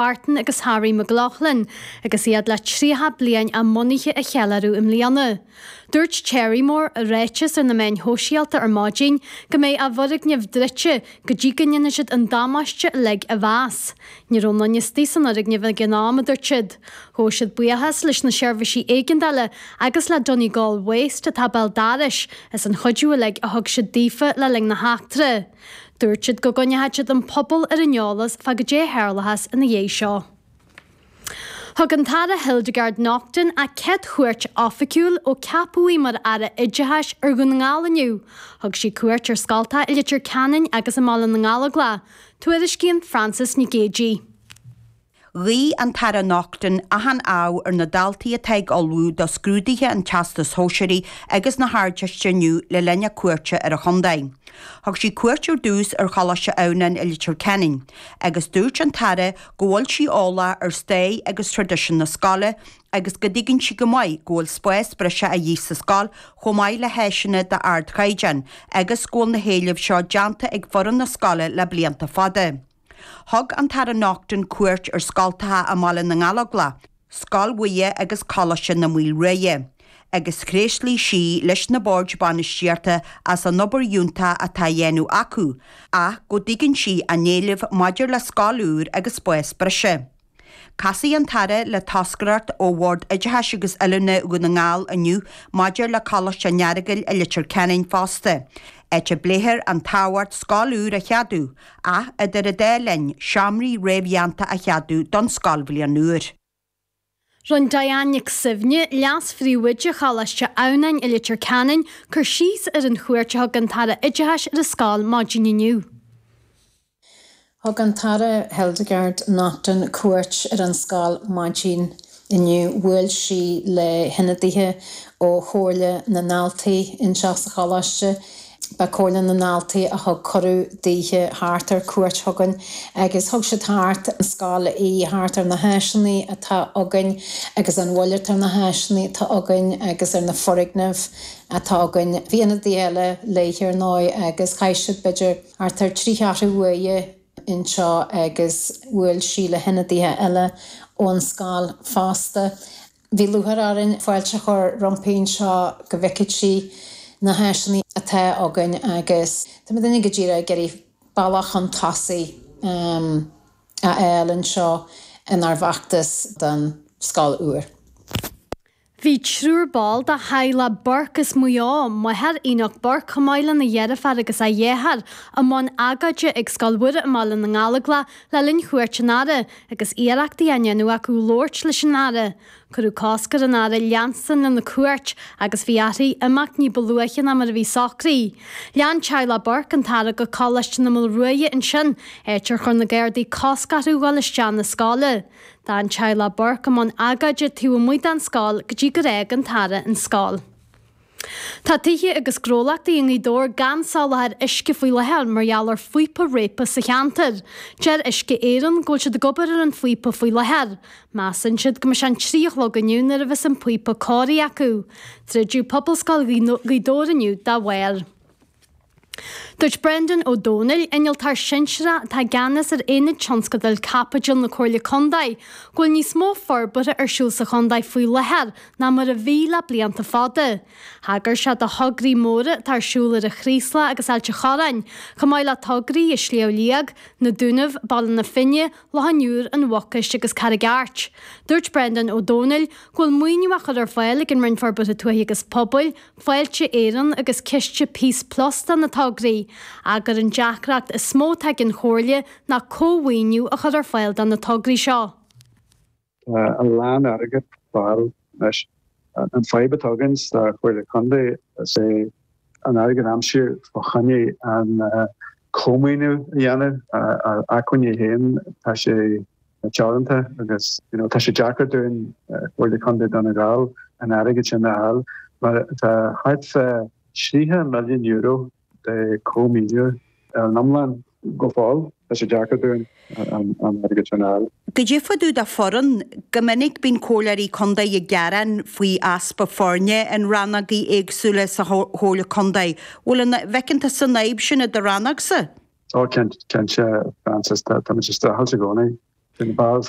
Martin agus Harry McLaughlin, agus iad le 30 bliain a mbunaithe a cheiliúradh i mbliana. Dúirt Cherrymore i ráiteas ar na meáin shóisialta ar maidin go mbeidh a bhfoirgneamh druidte go dtí go ndéanfaidh siad an damáiste uilig a mheas. Ní raibh aon fhostaí san fhoirgneamh ag an am, a dúirt siad. Ghabh siad buíochas leis na seirbhísí éigeandála agus le Donegal Waste atá béal dorais as an chuidiú uilig a thug siad daofa le linn na heachtra. Dúirt siad go gcoinneoidh siad an pobal ar an eolas fá goidé a tharlóchas ina dhiaidh seo. Thug an tAire Hildegarde Naughton a céad chuairt oifigiúil ó ceapadh í mar Aire Oideachais ar Dhún na nGall inniu. Thug sí cuairt ar scoltacha i Leitir Ceanainn agus i mBaile na nGallóglach, tuairiscíonn Frances Nic Géadaigh. Ghuigh an tAire Naughton achan ádh ar na daltaí atá ag ullmhú do scrúduithe an Teastais Shóisearaigh agus na hArdteiste inniu le linn a cuairte ar an chontae. Thug sí cuairt ar dtús ar Choláiste Adhamhnáin i Leitir Ceanainn, agus dúirt an tAire go bhfuil sí eolach ar stair agus traidisiún na scoile agus go dtuigeann sí go maith go bhfuil spás breise a dhíth sa scoil chomh maith le háiseanna d'ardchaighdeán agus go bhfuil na héilimh seo déanta ag foireann na scoile le blianta fada. Thug an tAire Naughton cuairt ar scoltacha i mBaile na nGallóglach, Scoil Mhuire agus Coláiste na Maoile Ruaidhe, agus thréaslaigh sí leis na Boird Bainistíochta as an obair fhiúntach atá á dhéanamh acu, ach go dtuigeann sí a n-éilimh maidir le scoil úr agus spás breise. Casfaidh an tAire le toscaireacht ó Bhord Oideachais agus Oiliúna Dhún na nGall inniu maidir le Coláiste an Earagail i Leitir Ceanainn fosta, áit a bpléifear an tábhacht scoil úr a cheadú, ach idir an dá linn, seomraí réamhdhéanta a cheadú don scoilbhliain úr. Rinne Diane Nic Suibhne, Leas-Phríomhoide Choláiste Adhamhnáin i Leitir Ceanainn, cur síos ar an chuairt a thug an tAire Oideachais ar an scoil maidin inniu. Thug an tAire Hildegarde Naughton cuairt ar an scoil maidin inniu. Bhuail sí le hionadaithe ó Chomhairle na nDaltaí anseo sa choláiste. Ba Chomhairle na nDaltaí a thug cuireadh daoithe theacht ar cuairt chugainn agus thug siad thart an scoil í thart ar na háiseanna atá againn agus bhuel thart ar na háiseanna atá againn agus ar na foirgnimh atá againn. Bhí ionadaithe eile léithe ar ndóigh agus chaith siad b'fhéidir thart ar trí cheathrú uaire anseo agus bhuail sí le hionadaithe eile ón scoil fosta. Bhí lúcháir orainn fáilte a chur roimpi anseo go bhfeicfeadh sí na háiseanna atá againn agus tá muidinne go díreach ag iarraidh bealach chun tosaigh a fháil anseo inár bhfeachtas don scoil úr. Bhí triúr ball de theaghlach Burke as Maigh Eo, máthair Enoch Burke, chomh maith lena dheirfiúr agus a dheartháir, i mbun agóide ag Scoil Mhuire i mBaile na nGallóglach le linn chuairt an Aire, agus iarrachtaí á ndéanamh acu labhairt leis an Aire. Cuireadh cosc ar an Aire leanstan lena cuairt agus bhí uirthi imeacht ní ba luaithe ná mar a bhí socraithe. Lean teaghlach Burke an tAire go Coláiste na Maoile Ruaidhe ansin, áit ar chuir na Gardaí cosc orthu dhul isteach na scoile. D'fhan teaghlach Burke i mbun agóide taobh amuigh den scoil go dtí gur fhág an tAire an scoil. Tá tithe agus gnólachtaí i nGaoth Dobhair gan soláthar uisce faoi láthair mar gheall ar phíopa réabtha sa cheantar. Deir Uisce Éireann go bhfuil siad ag obair ar an phíopa faoi láthair. Measann siad go mbeidh sé an trí a chlog inniu nuair a bheas an píopa cóirithe acu. Druideadh Pobalscoil Ghaoth Dobhair inniu dá bharr. Dúirt Brendan Ó Domhnaill, Innealtóir Sinsearach atá i gceannas ar Aonad Tionscadail Caipitil na Comhairle Contae, go bhfuil níos mó forbartha ar siúl sa chontae faoi láthair ná mar a bhí le blianta fada. Thagair sé do thograí móra atá ar siúl ar an Chraoslach agus Ailt a' Chorráin, chomh maith le tograí i Sliabh Liag, Na Dúnaibh, Baile na Finne, Loch an Iúir, An Mhucais agus Carraig Airt. Dúirt Brendan Ó Domhnaill, go bhfuil maoiniú á chur ar fáil ag an Roinn Forbartha Tuaithe agus Pobail, Fáilte Éireann agus ciste Peace Plus do na tograí, ach gur an deacracht is mó atá ag an Chomhairle ná comh-mhaoiniú a chur ar fáil do na tograí seo. Tá a lán airgid ar fáil anois. An fadhb atá againn sa Chomhairle Contae is é an airgead a aimsiú fá choinne an comh-mhaoiniú a dhéanamh. Ár n-acmhainní fhéin tá sé teoranta agus you know tá sé deacair dúinn Comhairle Contae Dhún na nGall an airgead sin a fháil mar tá thart fá thríocha milliún euro de chomh-mhaoiniú ar an iomlán go fóill, tá sé deacair dúinn an airgead sin a fháil. Cad é fá dtaobh de foireann, go minic bíonn Comhairleoirí Contae ag gearán faoi easpa foirne in rannógaí éagsúla sa Chomhairle Contae. Bhfuil an, bhfeiceann tusa an fhadhb sin i do rannógsa? Tá, cinnte, Frances, tá muid ag streachailt i gcónaí. Bhí na bars